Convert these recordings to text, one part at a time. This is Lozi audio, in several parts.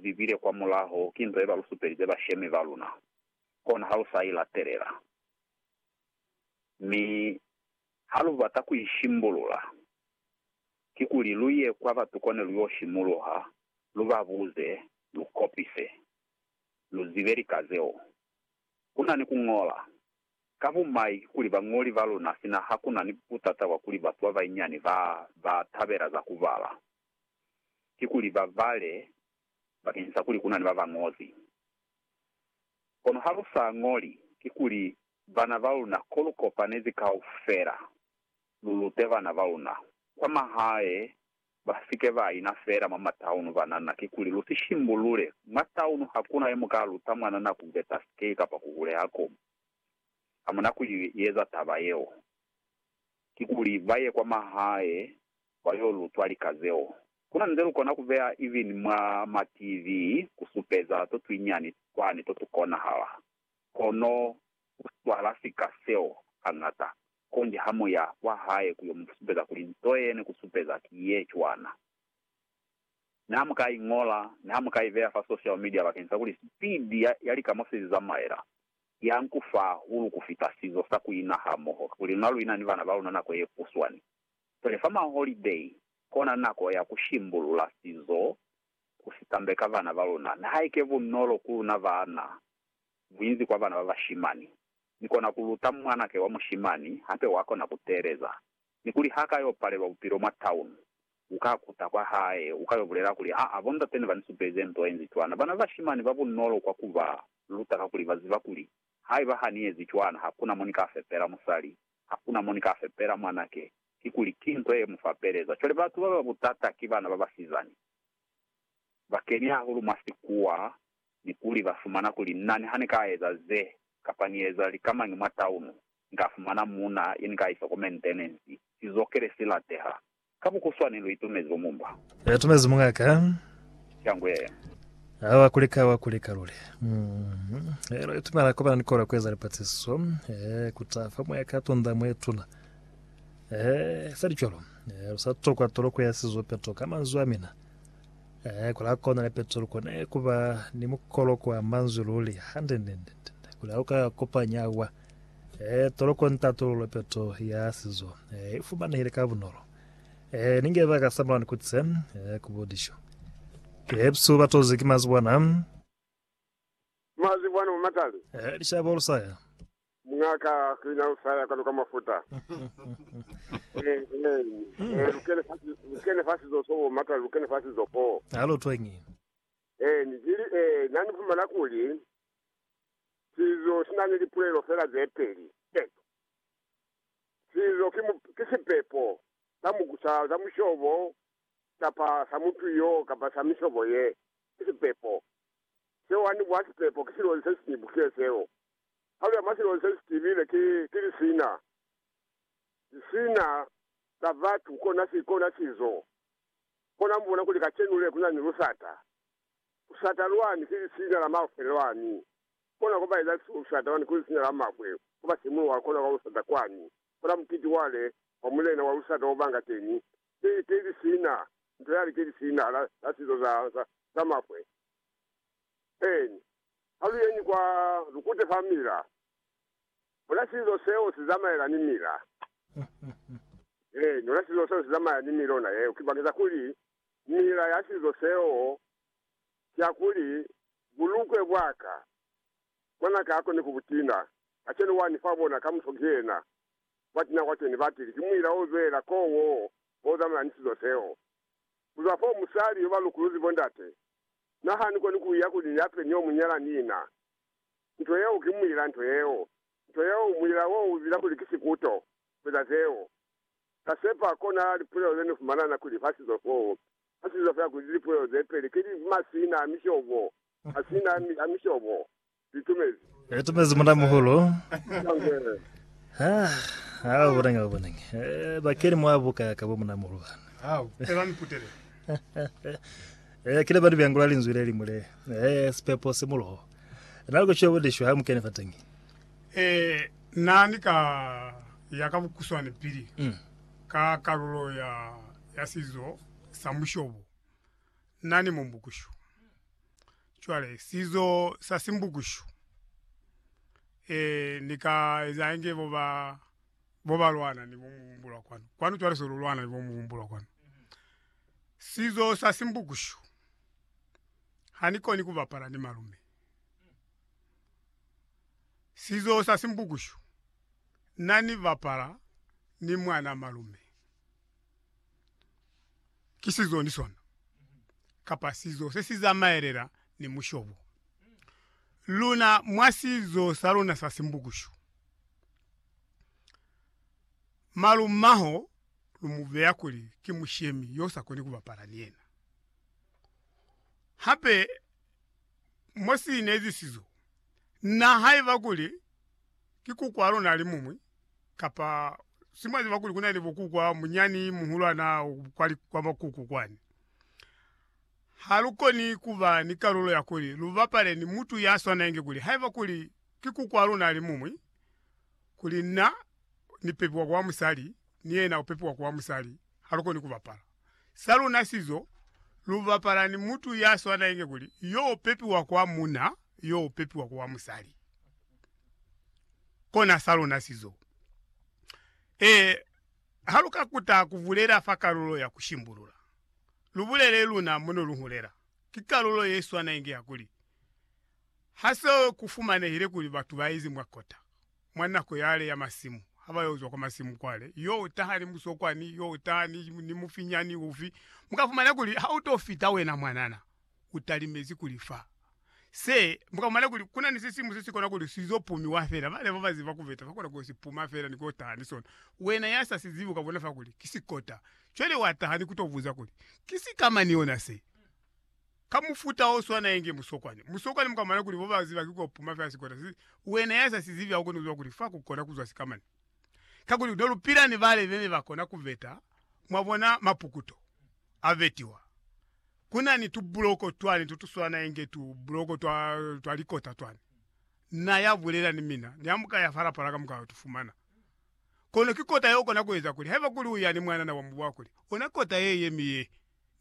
zibile kwa mulaho ki nto ye ba lu supelize bashemi ba luna, kona ha lu sa i latelela. Mi ha lu bata ku i shimbulula, kikuli lu ye kwa batu kone lu yo simuluha lu ba buze, lu kopise, lu zibe lika zeo. Ku na ni ku ñola. Ka bumai kikuli bañoli ba luna sina ha ku na ni butata bwa kuli batu ba banyinyani ba ba tabela za ku bala. ki kuli ba bale bakeñisa kuli ku na ni ba ba ñozi. Kono ha lu sa ñoli, kikuli bana ba luna ko lu kopanezi kaufela lu lute bana ba luna kwa mahae ba si ke ba ina feela mwa mataunu banana, kikuli lu si shimbulule mwa taunu ha ku na yo mu ka luta mwanana ku beta sikei kapa ku huleha ko ha mu na ku i eza taba yeo, kikuli ba ye kwa mahae ba yo lutwa lika zeo. Ku na nze lu kona ku beya even mwa ma TV ku supeza to twinyani twani to tu konahala. Kono u swala sika seo hañata, konji ha mu ya kwa hae ku yo mu supeza kuli nto ye ne ku supeza ki ye cwana. Ne ha mu ka i ñola, ne ha mu ka i beya fa social media bakeng sa kuli speed ya, ya lika mo se li zamaela, ya nku fahulu ku fita sizo sa ku ina hamoho, kuli luna lu ina ni bana ba luna nako ye kuswani. Pele fa maholideyi, kona nako ya ku shimbulula sizo ku si tambeka bana ba luna. Nihaike bunolo ku luna baana, buinzi kwa bana ba bashimani. Ni kona ku luta mwanake wa mushimani, hape wa kona ku teeleza. Ni kuli ha ka yo palelwa bupilo mwa town, u ka kuta kwa hae, u ka yo bulela kuli, Aa, bondate ne ba ni supelize nto ye nzi cwana. Bana ba bashimani ba bunolo kwa ku ba luta kakuli ba ziba kuli, Haiba ha ni ezi cwana, hakuna mo ni ka fepela musali Hakuna mo ni ka fepela mwan'a ke. Kikuli, ki nto ye mu fapeleza. Cwale batu ba ba butata ki bana ba basizani. Ba keni hahulu mwa sikuwa, ni kuli ba fumana kuli, Na niha ni ka eza ze, kapa ni eza likamañi mwa taunu, ni ka fumana muuna ye ni ka isa kwa mentenensi, sizokele si lateha, Ka bukuswani lu itumezi bo mumba. Lu itumezi munga ka. Shangwe ya. A wa kulika, wa kulika luli. Mm. E, lu itumela kubana ni kola kueza lipatiso. E, kuta fa moya ka tunda mwetuna. E, feli cwalo. E, lu sa tokwa toloko ya sizo peto ka manzwi a mina. E, kula kona le peto lu kone kuba ni mukoloko wa manzwi luli. Hande, nde, nde, nde. Kula uka kopanya wa. E, tolokoni tatululo peto ya sizo e, i fumanehile ka bunolo. E, ni nge ba ka samulaoni ku tse e, ku budišo. Kepsu ba tozi ki mazibwana. Mazibwana mamatali. E, lishabo lu saya. Mungaka ki na lu saya kanu ka mafuta. e, e, e, lu kene fa, lu kene fa sizo so bo matali, lu kene fa sizo foo. Alu twengi. E, ni jili e, na ni fumana kuli Sizo sina ni lipulelo fela ze peli. Peto. Sizo ki, ki sipepo sa muku, sa, sa mushobo, kapa sa mutu yo, kapa sa mishobo ye. Ki sipepo. Seo ani kwa sipepo, ki silozi se siñwi bukiye seo. Palo ya mwa silozi se si tibile ki, ki lisina. Lisina la batu, kona si, kona sizo. Kona mubona kuli kacenu le kuna ni lusata. Usata lwani ki lisiina la mafwe lwani. Kona kuba eza si usata wani ku lisiina la mafwe, kuba simulo wa kona kwa usata kwani. Kola mukiti wale wa mulena wa usata obanga teni, ki, ki lisiina, nto yale ki lisiina la, la sizo za, za, za mafwe. Eeni. Ha lu yeñi kwa, lu kute fa mila. Ona sizo seo si zamaela ni mila. Eeni, ona sizo seo si zamaela ni mila, ona yeo. Ki bakeza kuli Mila ya sizo seo kiyakuli, Bulukwe bwa ka, mwan'a ka akone ku bu tina. Kacenu wani fa bona kamuso ki yena wa tina kwa ceni. Batili ki muila o zwelela koo woo o zamana ni sizo seo. Ku zwa foo, musali yo ba lukuluzi bo ndate n'a hani koni ku iya kuli ya pe ni yo mu nyala ni ina. Nto yeo ki muila, nto yeo, nto yeo, muila woo u zila kuli ki sikuto ku eza zeo. Ni ka sepa kona lipulelo ze ni fumana na kuli fa sizo foo, fa sizo fela kuli lipulelo ze peli ki li masina a mishobo, masina a, a mishobo. Li tumezi. Li tumezi Muna-muhulu. Ha, ha u bonenge, u bonenge. Eh, bakeli mwa buka ka bo Muna-muhulu bana. Hau, ela ni kutele. Eh, kile ba ni byangula linzwi le limwi le, eh, sipepo si muloho. Na li kuciwa budishi ha mu kene fa teñi. Ee, na ni ka ya ka bukuswane pili ka kalulo ya ya sizo sa mushobo na ni mumbukushu. Cwale, sizo sa simbukushu, ee, ni ka eza inge bo ba, bo ba lwana ni bo mubumbulwa kwanu. Kwanu cwale se lu lwana ni bo mubumbulwa kwanu. Sizo sa simbukushu, ha ni koni ku bapala ni malume. Sizo sa Simbukushu na ni bapala ni mwana malume. Ki sizo ni sona, kapa sizo se si zamaelela ni mushobo. Luna mwa sizo sa luna sa Simbukushu, malumaho lu mu beya kuli ki mushemi yo sa koni ku bapala ni yena. Hape mo si nezisizo na, haiba kuli ki kukwa luna li mumwi, kapa si mwa ziba kuli kuna ni bukukwa munyani, muhulwana kwa, kwa bakuku kwani. Ha lu koni kuba ni kalulo ya kuli lu bapale ni mutu ya swanenge kuli haiba kuli ki kukwa luna li mumwi, kuli na ni pepiwa ku wa musali ni yena u pepiwa ku wa musali, ha lu koni ku bapala sa luna sizo. Lu bapala ni mutu ya swana inge kuli yo u pepiwa ku wa muna, yo u pepiwa ku wa musali. Kona sa luna sizo. E, ha lu ka kuta ku bulela fa kalulo ya ku shimbulula, lu bulele luna mo ne lu hulela. Ki kalulo ye swana inge ya kuli, Ha se ku fumanehile kuli batu ba ezi mwa kota mwa nako yale ya masimu, ha ba yo zwa kwa masimu kwale, yo taha ni musokwani, yo taha ni, ni mufinyani ufi, mu ka fumana kuli ha u to fita wena mwanana, u talimezi kuli fa. Se, mu ka fumana kuli kuna ni sisimu se si kona kuli si zo pumiwa fela. Bale ba ba ziba ku beta ba kona ku yo si puma fela ni ku yo taha ni sona. Wena ya sa si zibi u ka bona fa kuli ki sikota. Cwale wa taha ni ku to buza kuli, Ki sikama ni ona se? Ka mufuta o swana inge musokwani. Musokwani mu ka mona kuli bo ba ziba ki ko puma fela sikota si, wena ya sa si zibi ha u koni ku ziba kuli fa ku kona ku zwa sikamani. Kakuli no lu pila ni bale be ne ba kona ku veta, mwa bona, mapukuto a vetiwa. Ku na ni tubuloko twani to tu swana inge tu buloko twa, twa likota twani. Na ya bulela ni mina, ni ha mu ka ya fa lapala ka mu ka yo tu fumana. Kono ki kota ye u kona ku eza kuli, haiba kuli u ya ni mwanana wa mubu wa kuli, ona kota ye ye mi ye.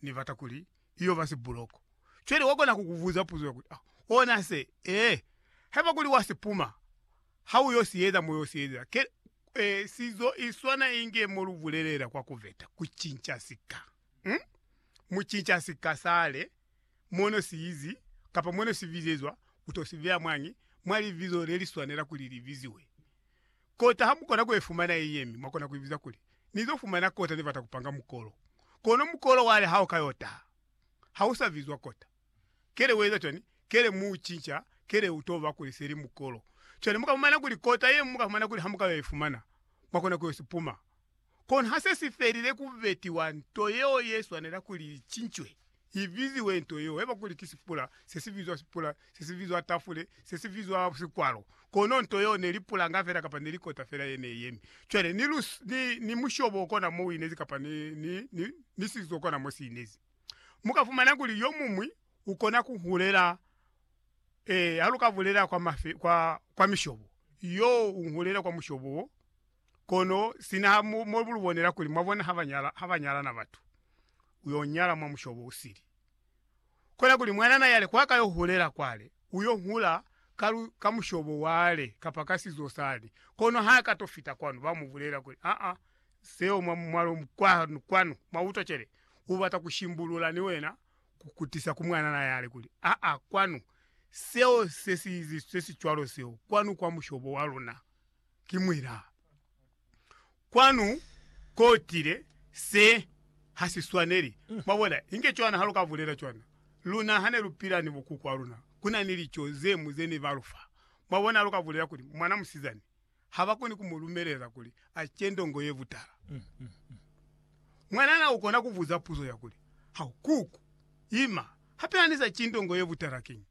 Ni bata kuli i yo ba sibuloko. Cwale wa kona ku ku buza puzo ya kuli, Ah, ona se? Ee. Haiba kuli wa si puma, ha u yo si eza mo yo si ezela. Ke, eh, si zo iswana inge mo lu bulelela kwa ku veta, ku cinca sika. Um? Mu cinca sika sale, mo no si izi, kapa mo no si bizezwa, u to si beya mwañi? Mwa libizo le li swanela kuli li biziwe. Kota hamukona kuefumana ye yemi, mwakona kuibiza kuli, Nizo fumana kota nibata kupanga mukolo. Kono mukolo wale hao kayo taha, hausa bizwa kota. Kele ueza cwani? Kele mu ucinca, kele uto ba kuli seli mukolo. Cwale mukafumana kuli kota ye muka fumana kuli hamukayo ifumana, mwakona kuyo sipuma. Kono ha se si felile ku betiwa nto yeo ye swanela kuli i cincwe, i biziwe nto yeo, haiba kuli ki sipula, se si bizwa sipula, se si bizwa tafule, se si bizwa sikwalo. Kono nto yeo ne li pulanga fela kapa ne li kota fela ye ne yemi. Cwale, ni, ni, ni mushobo o kona mo u inezi kapa ni, ni, ni, ni sizo kona mo si inezi. Mu ka fumana kuli yo muñwi u kona ku hulela, ee, ha lu ka bulela kwa mafe, kwa, kwa mishobo, yo u hulela kwa mushobo wo. Kono sina ha mu, mo lu bonela kuli, mwa bona, ha ba nyala, ha ba nyalana batu, u yo nyala mwa mushobo u sili. Kona kuli mwanana yale kwa ka yo hulela kwale, u yo hula ka, lu, ka mushobo wale kapa ka sizo sani. Kono ha ka to fita kwanu, ba mu bulela kuli, Aa, seo mwa, mwa lo, kwa, kwanu, mwa utwa cwale, u bata ku shimbulula ni wena, ku, ku tisa ku mwanana yale kuli, Aa, kwanu, seo se si, se si cwalo seo, kwanu kwa mushobo wa luna. ki mwina. Kwanu kotile se ha si swaneli. Mwabona, inge cwana ha lu ka bulela cwana. Luna hane lu pila ni bokuku ba luna, ku na ni lico ze mu ze ne ba lu fa. Mwabona, ha lu ka bulela kuli, Mwana musizani, ha ba koni ku mu lumelela kuli a ce ndongo ye butala. Mwanana u kona ku buza puzo ya kuli, Hau, kuku, ima, hape ha ni sa ci ndongo ye butala, kiñi?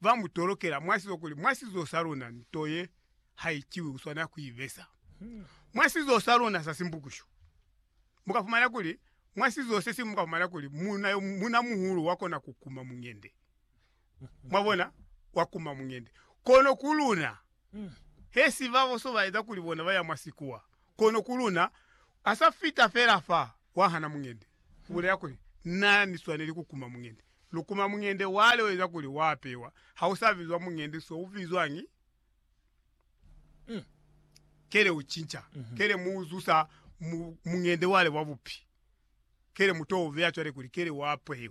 ba mu tolokela mwa sizo kuli mwa sizo sa luna nto ye ha iciwi u swanela ku i besa mwa sizo sa luna sa Simbukushu. Mu ka fumana kuli mwa sizo se siñwi mu ka fumana kuli muuna yo muuna muhulu wa kona ku kuma muñende, mwa bona, wa kuma muñende. Kono ku luna, he si ba boso ba eza kuli bona ba ya mwa sikuwa, kono ku luna, a sa fita fela fa, wa hana muñende, u bulela kuli, Na ni swaneli ku kuma muñende. Lukuma muñende wale ueza kuli wa apewa ha u sa bizwa muñende so u bizwañi? Kele u cinca, kele mu u zusa mu muñende wale wa bupi, kele mu to u beya cwale kuli kele wa apewa.